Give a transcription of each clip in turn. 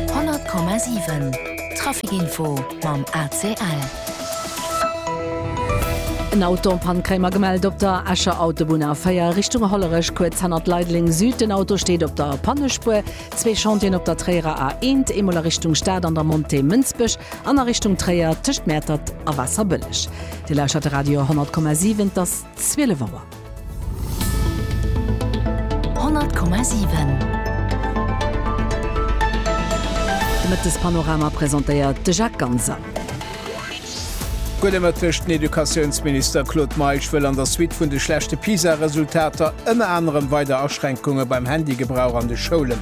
100,7 Trafic Info mam ACL. En Auto an Pann kréie mer gemellt op der Escher Autobunn A4 Richtung Hollerech, kuerz hannert Leideleng Süd. Den Auto steet op der Pannespuer. Zwee Chantieren op der Tréierer A eent, eemol a Richtung Stad an der Montée Mënsbech an a Richtung Tréier tëscht Mäertert a Waasserbëlleg. Dir lauschert de Radio 100,7, et ass 12 Auer. 100,7 De Mëttespanorama presentéiert de Jacques Ganser. Gudde Mëtteg, Den Educatiounsminister Claude Meisch wëll an der Suite vun de schlechte PISA-Resultater ënner anerem weider Aschränkunge beim Handygebrauch an de Schoulen.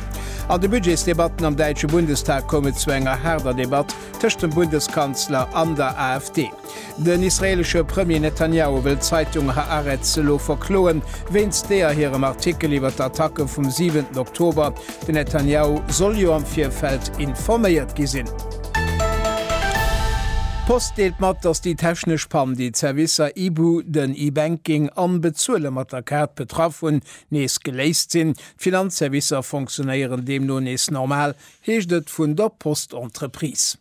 An de Budgetsdebatten am däitsche Bundestag koum et zu enger haarder Debatt tëscht dem Bundeskanzler an der AfD. Den israeelesche Premier Netanjahu wëll d'Zeitung Haaretz elo verkloen, wéinst deeër hirem Artikel iwwer d'Attacke vum 7 Oktober. Den Netanjahu soll jo am Virfeld informéiert gi sinn. D'Post deelt mat, datt déi technesch Pann, déi d'Servicer Ibu, den E-Banking an Bezuele mat der Kaart betraff hunn, nees geléist sinn. D'Finanzservicer fonctionéieren deemno nees normal, heescht et vun der Post-Entreprise.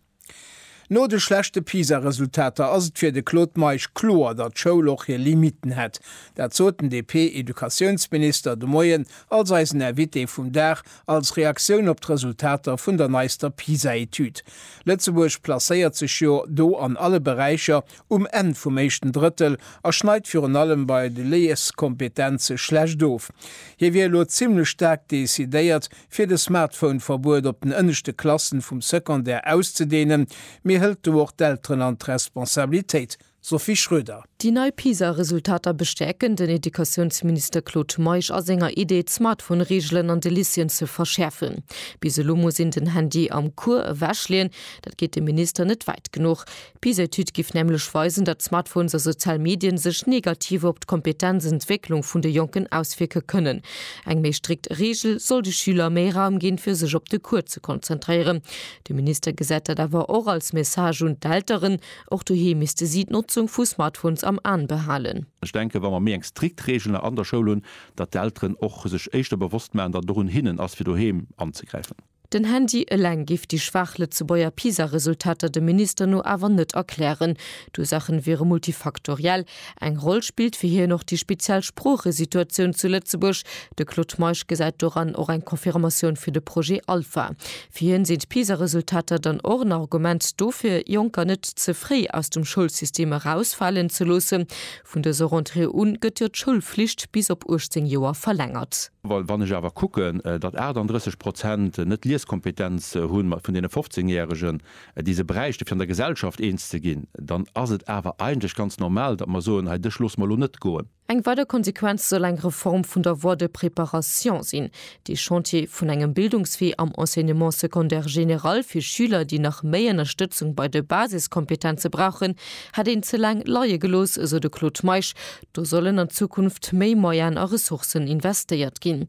No de schlechte PISA-Resultater ass et fir de Claude Meisch kloer, datt d'Schoul och hir Limitten hätt. Dat sot den DP-Educatiounsminister de Moien als eisen Invité vum Dag als Reaktioun op d'Resultater vun der neister PISA-Etüd. Lëtzebuerg placéiert sech jo do an alle Beräicher um Enn vum éischten Drëttel a schneit virun allem bei de Lieskompetenze schlecht of. Hie wier elo zimmlech staark decidéiert, fir de Smartphone-Verbuet op den ënneschte Klassen vum Secondaire auszedeenen, mee hëlt do och d'Elteren an d'Responsabilitéit? Sophie Schröder. Déi nei PISA-Resultater bestäerken den Educatiounsminister Claude Meisch a senger Idee, d'Smartphone-Reegelen an de Lycéeën ze verschäerfen. Bis elo muss een den Handy am Cours ewechleeën. Dat geet dem Minister net wäit genuch. D'PISA-Etüd géif nämlech weisen, datt Smartphones a sozial Medien sech negativ op d'Kompetenzentwécklung vun de Jonken auswierke kënnen. Eng méi strikt Reegel soll de Schüler méi Raum ginn, fir sech op de Cours ze konzentréieren. De Minister gesäit dat awer och als Message un d'Elteren, och doheem misste si d'Notzung vu Smartphones am An behalen. Ech denken, wa mer méi eng strikt Reegel an der Schoul hunn, datt d'Elteren och sech éischter bewosst maachen, datt et och un hinnen ass, fir doheem anzegräifen. Den Handy eleng géif déi schwaach Lëtzebuerger PISA-Resultater dem Minister no awer net erklären. D'Ursaachen wiere multifaktoriell. Eng Roll spillt fir hien och déi speziell Sproochesituatioun zu Lëtzebuerg. De Claude Meisch gesäit doran och eng Confirmatioun fir de Projet Alpha. Fir hien sinn d'PISA-Resultater dann och en Argument dofir, Jonker net ze fréi aus dem Schoulsystem erausfalen ze loossen. Vun dëser Rentrée u gëtt jo d'Schoulflicht bis op 18 Joer verlängert. Well wann ech awer kucken, datt 38 Prozent net Lieskompetenz hu vun deene 15 Järegen, déi se bräichte fir an der Gesellschaft eens ze ginn, dann ass et awer eigentlech ganz normal, datt mer soen, hei dech loosse mer elo net goen. Eng weider Konsequenz soll eng Reform vun der Voie de préparation sinn. Dee Chantier vun engem Bildungswee am Enseignement secondaire général fir Schüler, déi nach méi Ënnerstëtzung bei de Basiskompetenze brauchen, hätt een ze laang leie gelooss, esou de Claude Meisch, Do sollen an Zukunft méi Moyen a Ressourcen investéiert ginn.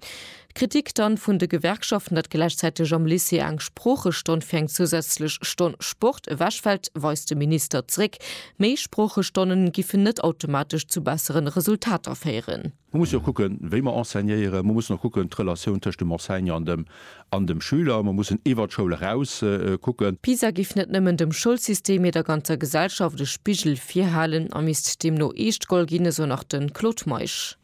D'Kritik dann vun de Gewerkschaften, datt gläichzäiteg am Lycée eng Sproochestonn fir eng zousätzlech Stonn Sport ewechfält, weist de Minister zréck. Méi Sproochestonnen giffen net automatesch zu besseren Resultater féieren. Mer mussen jo kucken, wéi mer enseignéieren. Mer mussen och kucken, d'Relatioun tëscht dem Enseignant an dem An dem Schüler. Mer mussen iwwert d'Schoul eraus kucken. Pisa giff net nëmmen dem Schoulsystem, mee der ganzer Gesellschaft e Spigel virhalen a misst deemno eescht goll ginn, esou nach de Claude Meisch.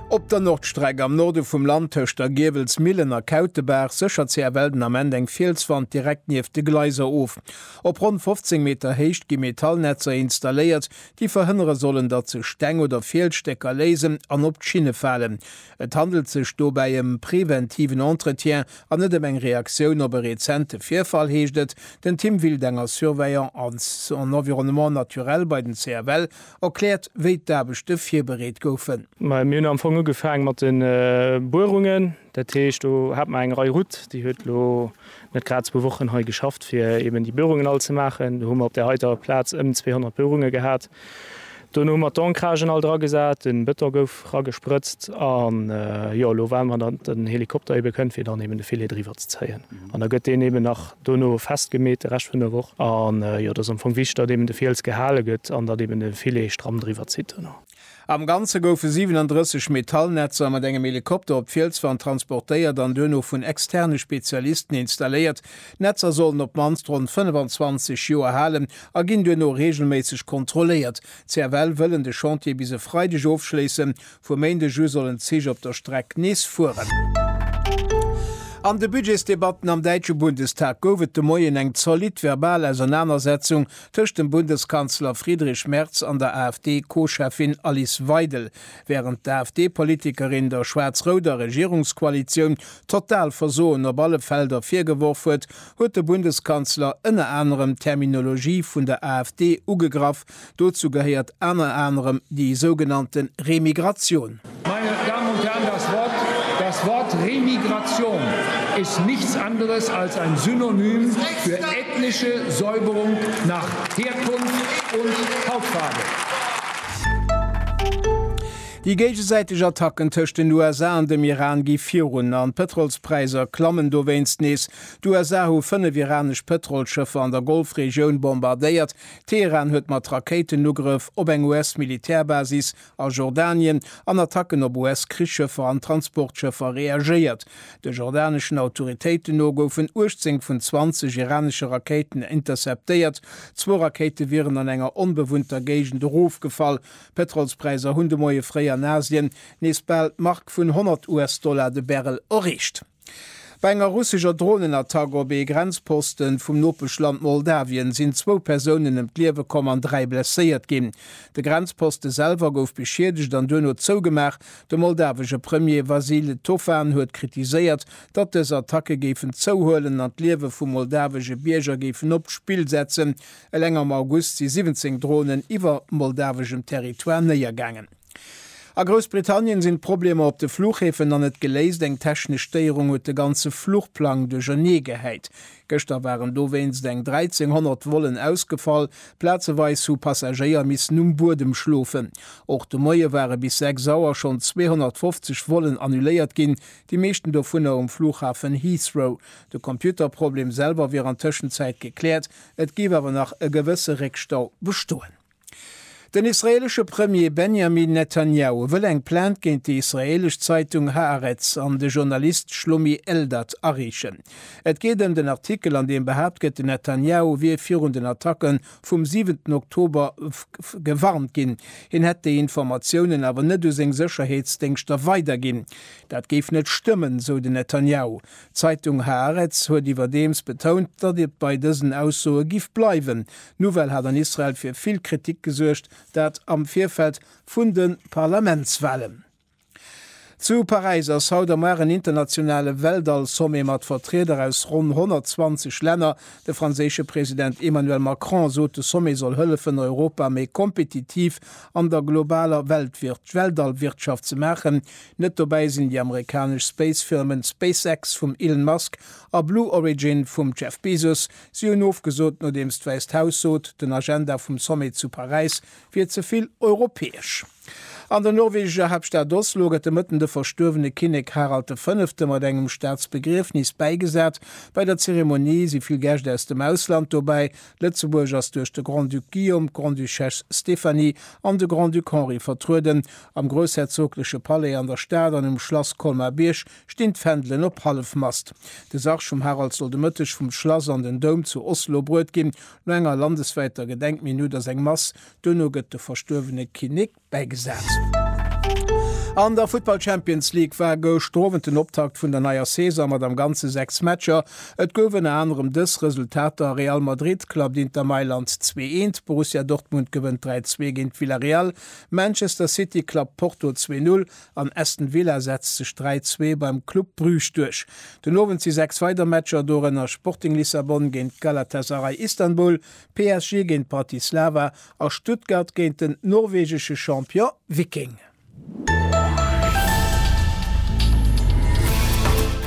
Op der Nordstreck am Norde vum Land tëscht der Giewelsmillen a Kautebaach séchert CFL den Ament eng Fielswand direkt nieft de Gleiser of. Op ronn 15 Meter Héicht gi Metallnetzer installéiert, déi verhënnere sollen, datt sech Steng oder Fielsstécker léisen an op d'Schinne falen. Et handelt sech dobäi ëm preventiven Entretien an net ëm eng Reaktioun op e rezente Virfall, heescht et. Den Tim Wildenger, Surveillant en environnement naturel bei den CFL, erkläert, wéi d'Aarbechte virbereet goufen. Mir hunn am Fong ugefaange mat de Buerungen. Dat heescht, do hat mer eng Rei Route, déi huet elo net grad zwou Wochen hei geschafft, fir eeben déi Buerungen all ze maachen. Do hu mer op där heiter Plaz ëm 200 Buerunge gehat. Dono hu mer d'Ancragen all dra gesat, den Beton gouf ragesprëtzt an jo elo waarden mer dat den Helikopter eben kënnt fir dann eben de Filet driwwer ze zéien an da gëtt deen eben nach dono fest gemeet de Rescht vun der Woch an jo dat ass am Fong wichteg dat eben de Fiels gehale gëtt an dat eben de Filet stramm driwwer zitt dono. Am Ganze goufe 37 Metallnetzer mat engem Helikopter op d'Fielswand transportéiert an duerno vun externe Spezialisten installéiert, D'Netzer sollen op d'mannst ronn 25 Joer halen a ginn duerno reegelméisseg kontrolléiert. CFL wëllen de Chantier bis e Freideg ofschléissen. Vum Méindeg u sollen d'Zich op der Streck nees fueren. An de Budgetsdebatten am däitsche Bundestag gouf et de Moien eng zolidd verbal Ausernanersetzung tëscht dem Bundeskanzler Friedrich Merz an der AfD-Co-Cheffin Alice Weidel. Wärend d'AfD-Politikerin der schwaarz-rouder Regierungskoalitioun total Versoen op alle Felder virgeworf huet, huet de Bundeskanzler ënner anerem d'Terminologie vun der AfD ugegraff. Dozou gehéiert ënner anerem déi sougenannte Remigratioun. Meine Damen und Herren, das Wort, das Wort Remigration ist nichts anderes als ein Synonym für ethnische Säuberung nach Herkunft und Hautfarbe. Déi géigesäiteg Attacken tëscht den USA an dem Iran gi virun an d'Pëtrolspräisser klammen dowéinst nees. D'USA hu fënnef iranesch Pëtrolsschëffer an der Golfregioun bombardéiert. Teheran huet mat Rakéitenugrëff op eng US-Militärbasis a Jordanien an Attacken op US-Krichsschëffer an Transportschëffer reagéiert. De jordaneschen Autoritéiten no goufen 18 vun 20 iranesche Rakéiten interceptéiert. Zwou Rakéite wieren an enger onbewunnter Géigend erofgefall. D'Pétrolspräisser hunn de Moie fréi an Asien nees bal d'Mark vun 100 US-Dollar de Barrel erreecht. Bei enger russescher Dronenattack op ee Grenzposte vum Nopeschland Moldawien sinn zwou Persounen ëm d'Liewe komm an dräi blesséiert ginn. De Grenzposte selwer gouf beschiedegt an duerno zougemaach, De moldawesche Premier Vasil Tofan huet kritiséiert, datt dës Attacke géifen zouhuelen an d'Liewe vu moldawesche Bierger géifen op d'Spill setzen. Eleng am August si 17 Dronen iwwer moldaweschem Territoire néiergaangen. A Groussbritannien sinn d'Problemer op de Fluchhäfen nach net geléist. Eng technesch Stéierung huet de ganze Fluchplang duercherneegehäit. Gëschter waren dowéinst eng 1.300 Vollen ausgefall, plazeweis hu Passagéier missen um Buedem schlofen. Och de Moie ware bis 6 Auer schonn 250 Vollen annuléiert ginn, déi meeschten dovunner um Flughafen Heathrow. De Computerproblem selwer wier an Tëschenzäit gekläert, et géif awer nach e gewësse Réckstau bestoen. Den israeelesche Premier Benjamin Netanjahu wëll eng Plainte géint déi israeelesch Zeitung Haaretz an de Journalist Shlomi Eldad areechen. Et geet ëm den Artikel, an deem behaapt gëtt, den Netanjahu wier virun den Attacke vum siwenten Oktober gewarnt ginn. Hien hätt déi Informatiounen awer net u seng Sécherheetsdéngschter weiderginn. Dat géif net stëmmen, sou den Netanjahu. D'Zeitung Haaretz huet iwwerdeems betount, datt et bei dësen Aussoe giff bleiwen. D'Nouvelle hat an Israel fir vill Kritik gesuergt, dat am Virfeld vun de Parlamentswalen. Zu Paräis ass haut am Ar en internationale Weltall-Sommet mat Vertrieder aus ronn 120 Länner. De franséische President Emmanuel Macron sot, de Sommet soll hëllefen, Europa méi kompetitiv an der globaler Weltall-Wirtschaft ze maachen, Net dobäi sinn déi amerikanesch Space-Firmen SpaceX vum Elon Musk a Blue Origin vum Jeff Bezos. Si hunn ofgesot, nodeems d'Wäisst Haus sot, den Agenda vum Sommet zu Paräis wier ze vill europäesch. An der norwegescher Haaptstad Oslo gëtt de Mëtten de verstuerwene Kinnek Harald de Fënnefte mat engem Staatsbegriefnis bäigesat. Bei der Zeremonie si vill Gäscht aus dem Ausland dobäi, Lëtzebuerg ass duerch de Grand-Duc Guillaume, d'Grande-Duchesse Stéphanie an de Grand-Duc Henri vertrueden. Am groussherzogleche Palais an der Stad an um Schlass Colmar-Bierg stinn d'Fändelen op Hallefmast. De Sarg vum Harald soll de Mëtteg vum Schlass an den Doum zu Oslo bruet ginn. No enger landeswäiter Gedenkminutt ass eng Mass, duerno gëtt de verstuerwene Kinnek, bäigesat. An der Futtball Champions League war gëscht Owend den Optakt vun der neier Saison mat am Ganze 6 Matcher. Et gouf ënner anerem dës Resultater, Real Madrid klappt Inter Mailand 2 Eent, Borussia Dortmund gewënnt 3 Zwee géint Villarreal, Manchester City klappt Porto 2 Null an Aston Villa setzt sech 3 Zwee beim Club Bruges duerch. Den Owend si 6 weider Matcher, dorënner Sporting Lissabon géint Galatasaray Istanbul, PSG géint Bratislava A Stuttgart géint den norwegesche Champion Viking.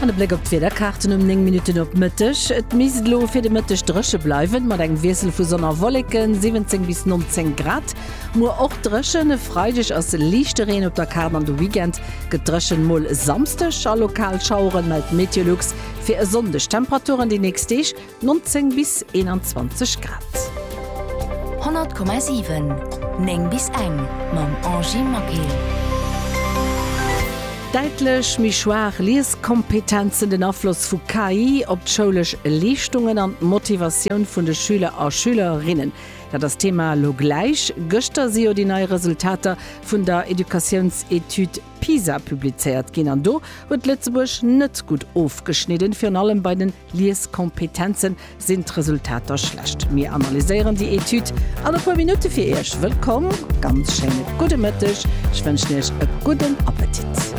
An e Bléck op d'Wiederkaarten um 9 Minutten op Mëtteg. Et misst elo fir de Mëtteg dréche bleiwen, mat engem Wiessel vu Sonn a Wolleken, 17 bis 19 Grad. Muer och dréchen, e Freideg ass liichte Reen op der Kaart an de Weekend gëtt dréchen, mol Samsdeg a lokal Schaueren, mellt Meteolux fir e Sonndeg. D'Temperaturen déi nächst Deeg 19 bis 21 Grad. 100,7 9 bis eng mam Angie Maquil. Däitlech méi schwaach Lieskompetenzen, den Afloss vu KI op d'schoulesch Leeschtungen an d'Motivatioun vun de Schüler a Schülerinnen, dat ass d'Thema elo gläich. Gëschter si jo déi nei Resultater vun der Educatiounsetüd PISA publizéiert ginn an do huet Lëtzebuerg net gutt ofgeschnidden, virun allem bei den Lieskompetenzen, sinn d'Resultater schlecht? Mir analyséieren déi Etüd an e puer Minutte fir Iech. Wëllkomm, ganz schéine gudde Mëtteg, ech wënschen Iech e gudden Appetit.